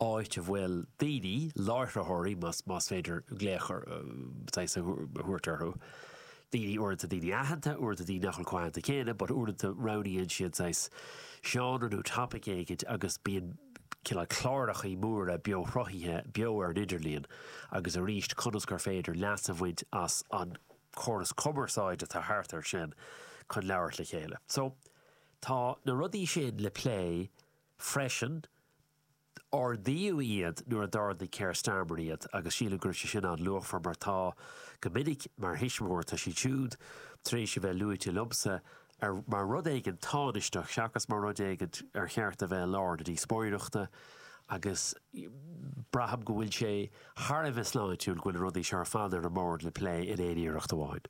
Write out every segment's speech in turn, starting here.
áit a bhfuil daoine, láithreoirí más féidir glaoch a thabhairt orthu, daoine uaireanta daoine aitheanta, uaireanta daoine nach bhfuil chomh haitheanta céanna but uaireanta roghnaíonn siad saghas seánra nó topic éigin agus bíonn cineál clárachaí móra beo-shruthaithe beo ar an idirlíon agus arís conas gur féidir leas a bhaint as an córas cumarsáide atá thart air sin chun labhairt le chéile. So tá na rudaí sin le plé freisin. Ardaíodh iad nuair a d'ardaigh Keir Starmer iad agus sílim go raibh sé sin an-luachmhar mar tá, go minic, mar thuismitheoir, tá sé siúd tar éis a bheith luaite liomsa mar rud éigin tánaisteach seachas mar rud éigin ar cheart a bheith i lár na díospóireachta agus braithim go bhfuil sé thar a bheith sláintiúil go bhfuil na rudaí seo ar fad ar an mbord le plé in éineacht amháin.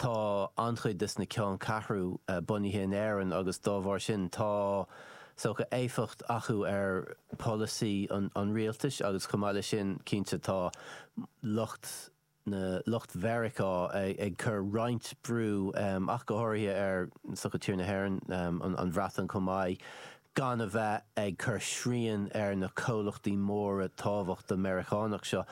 tá an-chuid de na ceanncheathrú bunaithe in Éirinn agus dá bharr sin tá socha éifeacht acu ar polasaí an rialtais agus chomh maith leis sin cinnte tá lucht na lucht Mheiriceá ag cur roinnt brú ach go háirithe ar socha tír na hÉireann an Bhreatain chomh maith. gan a bheith ag cur srian ar na comhlachtaí móra tábhachtach Meiriceánach seo.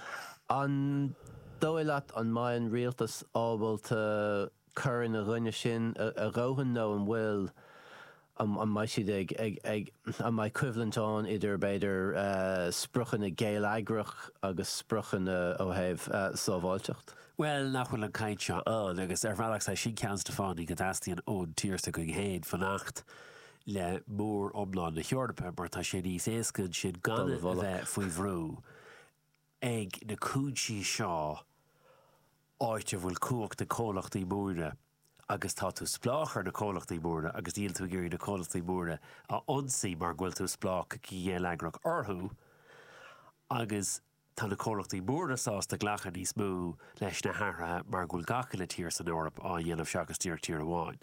An dóigh leat an mbeidh an rialtas ábalta cur ina choinne sin a dhóthain nó an bhfuil, an mbeidh siad ag, ag, an mbeidh coimhlint ann idir b'fhéidir spriocanna geilleagrach agus spriocanna ó thaobh sábháilteacht? Bhuel, nach bhfuil an caint seo ann, agus ar bhealach is é sin ceann de na fáthanna, go dteastaíonn ón tír s'againn féin fanacht le móriomlán na hEorpa mar tá sé níos éasca ansin gan a bheith faoi bhrú ag na cúinsí seo áit a bhfuil cumhacht ag comhlachtaí móra agus tá tú spleách ar na comhlachtaí móra agus níl tú ag iarraidh na comhlachtaí móra a ionsaí mar go bhfuil tú spleách go geilleagrach orthu agus tá na comhlachtaí móra sásta glacadh níos mó leis na hathruithe mar go bhfuil gach uile tír san Eoraip á dhéanamh seachas díreach tír amháin.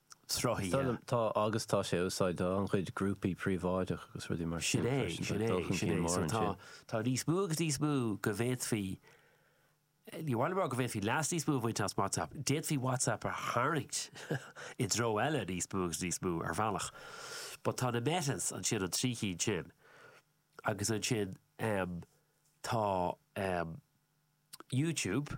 Tá, agus tá sé á úsáid do an-chuid grúpaí príobháideach agus rudaí mar sin freisin, tá dul chun cinn mór ansin. Tá níos mó agus níos mó go bhféadfaí, ní hamháin go bhféadfaí leas níos mó a bhaint as WhatsApp, d'fhéadfaí WhatsApp a tharraingt i dtreo eile níos mó agus níos mó ar bhealach. But tá na Metas ansin an trí cinn sin agus ansin tá YouTube,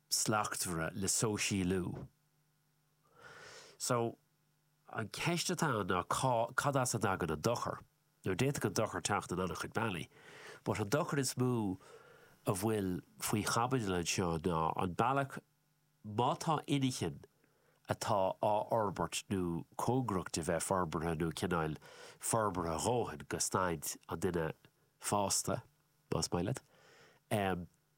slachtmhara le sóisialú. So, an ceist atá ann ná cad as a dtagann an dochar? Now, d'fhéadfadh an dochar teacht in an-chuid bealaí, but an dochar is mó a bhfuil faoi chaibidil anseo ná an bealach, má tá inchinn atá á fhorbairt nó cóngarach do bheith forbartha nó cineál forbartha a dhóthain go staid an duine fásta, más maith leat,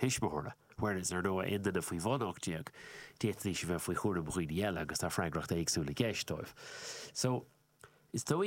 thuismitheora, whereas ar ndóigh aon duine faoi bhun 18, d'fhéadfaidís a bheith faoi chúram daoine eile agus tá freagracht éagsúil i gceist dóibh. So, is dóigh.